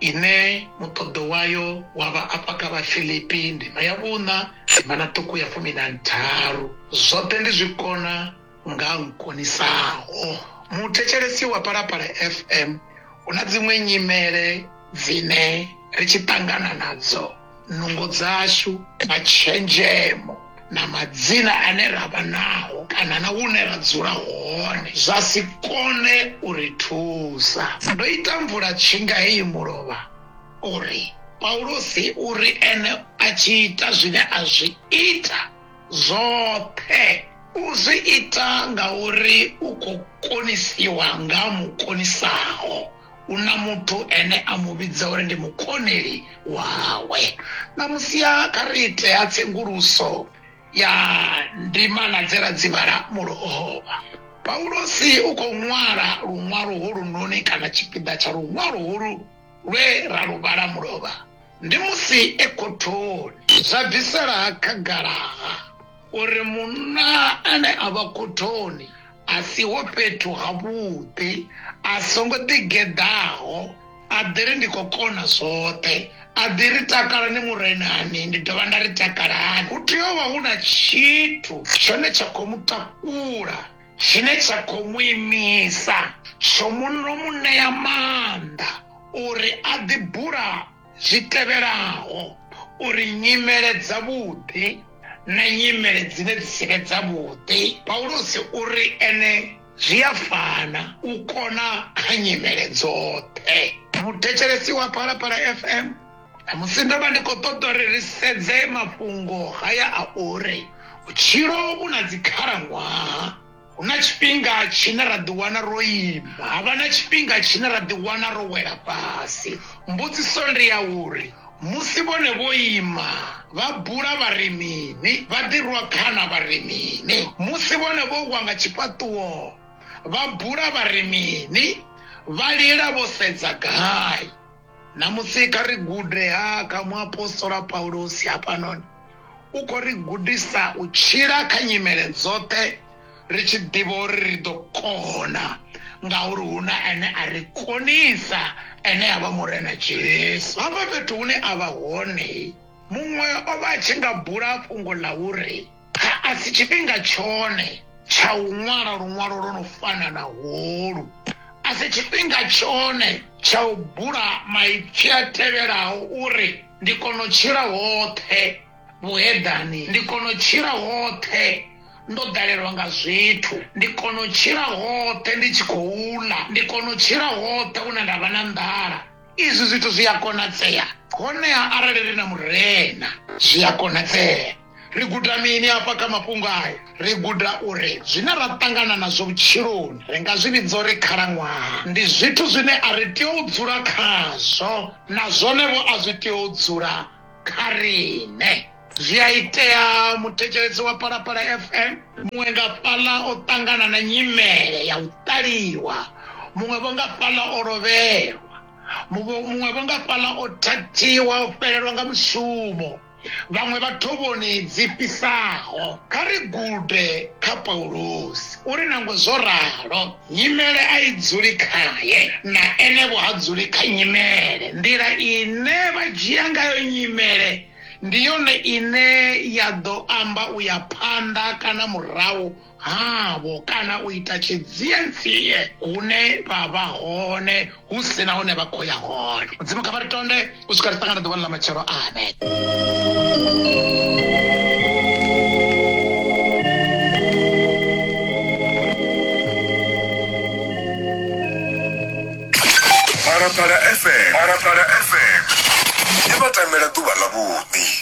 ine muṱoḓo wayo wa vha afha kha Vhafilipi ndima ya vhuṋa ndima na ṱuku ya fumi na ntharu. Zwoṱhe ndi zwi kona nga nkonisaho. Muthetshelesi wa Phalaphala FM, hu na dziṅwe nyimele dzine ri tshi ṱangana nadzo. nungo dzashu na tshenzhemo na madzina ane ra vha nao kana na hune ra dzula hone zwa si kone u ri thusa. Ndo ita mvula tshinga heyi mulovha uri Paulusi u ri ene a tshi ita zwine a zwi ita zwoṱhe u zwi ita ngauri u khou konisiwa nga Mukonisaho. u na muthu ene a mu vhidza uri ndi mukoneli wawe. Ṋamusi-ha kha ri ite-ha tsenguluso ya ndimana dze ra dzi vhala mulovha. Paulosi u khou ṅwala luṅwalo holunoni kana tshipiḓa tsha luṅwalo holu lwe ra lu vhala mulovha ndi musi e khothoni. Zwa bvisela khagala-ha uri munna ane a vha khothoni a siho fhethu havhuḓi a songo ḓigeḓaho a ḓi ri ndi khou kona zwoṱhe a ḓi ri takalani murenani ndi dovha nda ri takalani hu tea u vha hu na tshithu tshone tsha khou mu takula tshine tsha khou mu imisa tsho muno mu ṋea maanḓa uri a ḓi bula zwi tevhelaho uri nyimele dzavhuḓi na nyimele dzine dzi si vhe dzavhuḓi paulusi u ri ene zwi a fana u kona kha nyimele dzoṱhe muthetshelesi wa phalaphala fm musi ndo vha ndi khou ṱoḓa uri ri sedze mafhungo haya a uri vhutshilo vhu na dzikhalaṅwaha Hu na tshifhinga tshine ra ḓiwana ro ima, ha vha na tshifhinga tshine ra ḓiwana ro wela fhasi. Mbudziso ndi ya uri, Musi vhone vho ima, vha bula vha ri mini? Vha ḓi rwa khana vha ri mini? Musi vhone vho wa nga tshifhaṱuwo, vha bula vha ri mini? Vha lila vho sedza gai? Ṋamusi kha ri gude ha kha muapostola Paulusi. Hafhanoni u khou ri gudisa u tshila kha nyimele dzoṱhe ri tshi ḓivha uri ri ḓo kona ngauri hu na ane a ri konisa, ane a vha Murena Jesu. Hafha fhethu hune a vha hone, muṅwe o vha a tshi nga bula fhungo ḽa uri. A si tshifhinga tshone tsha u ṅwala luṅwalo lwo no fana na holu. A si tshifhinga tshone tsha u bula maipfi a tevhelaho uri, Ndi kona u tshila hoṱhe vhuheḓani, ndi kona u tshila hoṱhe ndo ḓalelwa nga zwithu, ndi kona u tshila hoṱhe ndi tshi khou ḽa, ndi kona u tshila hoṱhe hune nda vha na nḓala. Izwi zwithu zwi a konadzea, honeha arali ri na Murena, zwi a konadzea. ri guda mini afha kha mafhungo aya ri guda uri zwine ra ṱangana nazwo vhutshiloni ri nga zwi vhidza uri khalaṅwaha ndi zwithu zwine a ri tea u dzula khazwo na zwonevho a zwi tea u dzula kha riṋe zwi a itea muthetshelesi wa palapala fm muṅwe nga fhaḽa o ṱangana na nyimele ya u ṱaliwa muṅwe vho nga fhaḽa o lovhelwa muṅwe vho nga fhaḽa o thathiwa o fhelelwa nga mushumo vhaṅwe vha thovhoni dzi fhisaho. Kha ri gude kha Paulusi uri nangwe zwo ralo, nyimele a i dzuli khae, na ene-vho ha dzuli kha nyimele. Nḓila ine vha dzhia ngayo nyimele ndi yone ine ya ḓo amba u ya phanḓa kana murahu. havho kana u ita tshidzienzie hune vha vha hone hu si na hune vha khou ya hone mudzimu kha vha ri tonde u swika ri ṱangana ḓuvhani ḽa matshelo amen Parapara FM. Parapara FM. Ndi vhatamela ḓuvha ḽavhuḓi.